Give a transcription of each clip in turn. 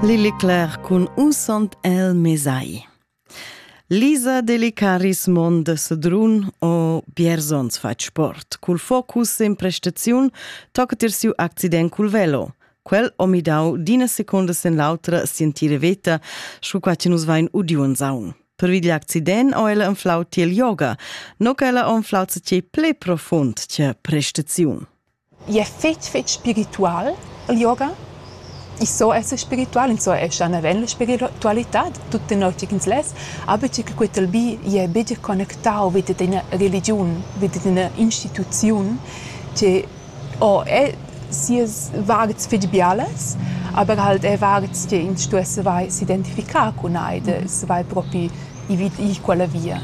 Lilly Claire cun Un sant el mesai. Lisa Delicaris Mond Sedrun o Bierzons fat sport. Cul focus in prestaziun toccat ir siu accident cul velo. Quel omi dau d'ina seconda sen l'autra sentire veta, scu qua che nus vain udiun saun. Per vigli accident o ella enflau tiel yoga, no che ella onflau ce ple profund che prestaziun. I es fich fich spiritual il yoga. I so esser spiritual, ins so esser naven la spiritualitad tut tenor tgi ch'ins less, aber tgi che quetel bi jè better connectau vi dad ina religiun, vi dad ina instituziun che o è sias vards fich bialas, aber halt è vards che ins stuess savair s'identificar cun ei, da savair propi i vi i quella via.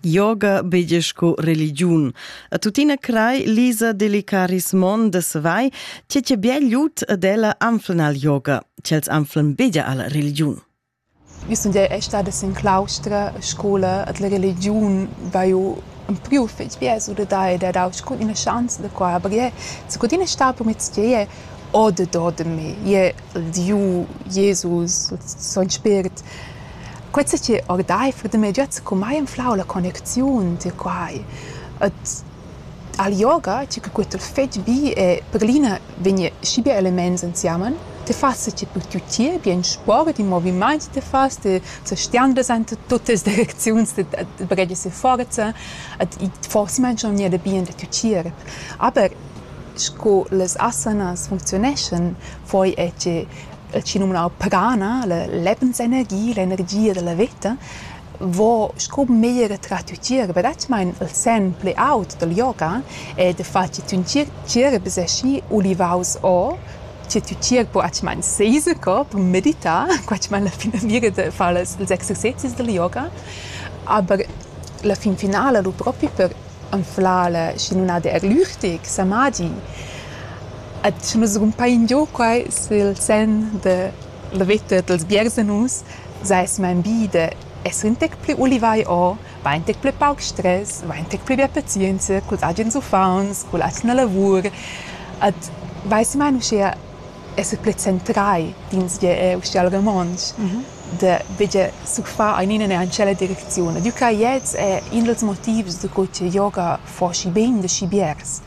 Yoga beige sco religiun. A tuttina crai Lisa delicaris mon de savai, tge che bien lut ad ella anflan al yoga, tg'els anflan begia alla religiun. Io sun er stada sin claustra a scola ad la religiun va eu un priu fetg bias u da da dau scu ina chance da qua, aber je, secundina sta per meztgei o de do de me, je il Diu, Jesus, il son Spirit. Quei sa che ordeifer da miu giat secumai anflau la connecziun tier quai. Ed al yoga, tgi che quei t'ha fetg bi e per glina vegn schi bia elements ensemen, ti fas sa che tut tier bi en sport, in movimaint ti fas, ti sa stiandlas enta tuttas direcziuns, ti baghegias e forza ed i forsa mangia aunc gnanca bien da tü tgierp. Aber sco las asanas funcziuneschan, foi è che chi numnau Pagana, la lebensenergia, l'energia dalla veta, vo sco meglier tras tü tgir verdetgamaing il sen plü aut dal yoga ed il fat chi tün tgirb es aschi ulivaus o che tü tgirb atgamaing seis corp, meditar, quatschamaing la finamira da far las ils exercezis dal yoga, aber la fin finala lu propi per anflar la schinunada eglurtic samadi. Ed sche nus rumpain giò quai sül sen da la vetta dals biersenus, seis main bi da esser ün tec plü ulivai o, vain ün tec plü pauc stress, vain ün tec plü bia pazienza culs agens uffants, culla atgna lavur ed vaisi main uschea esser plü centrai d'insvier eir uschea al romontsch. da veger surfar einina neanche ella direcziun. Diu ca gliez è in dals motivs da co che yoga fa schi bein da schi biars.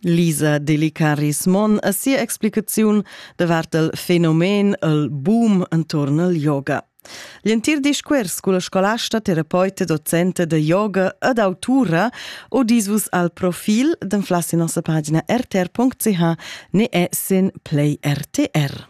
Lisa Delicaris Mon a sia explicaziun davart il fenomen el boom entorn al yoga. L'entir discuors culla scolasta, terapeuta, docenta da yoga ed autura o disvus al profil d'anflassi nossa pagina rtr.ch ne è sin Play RTR.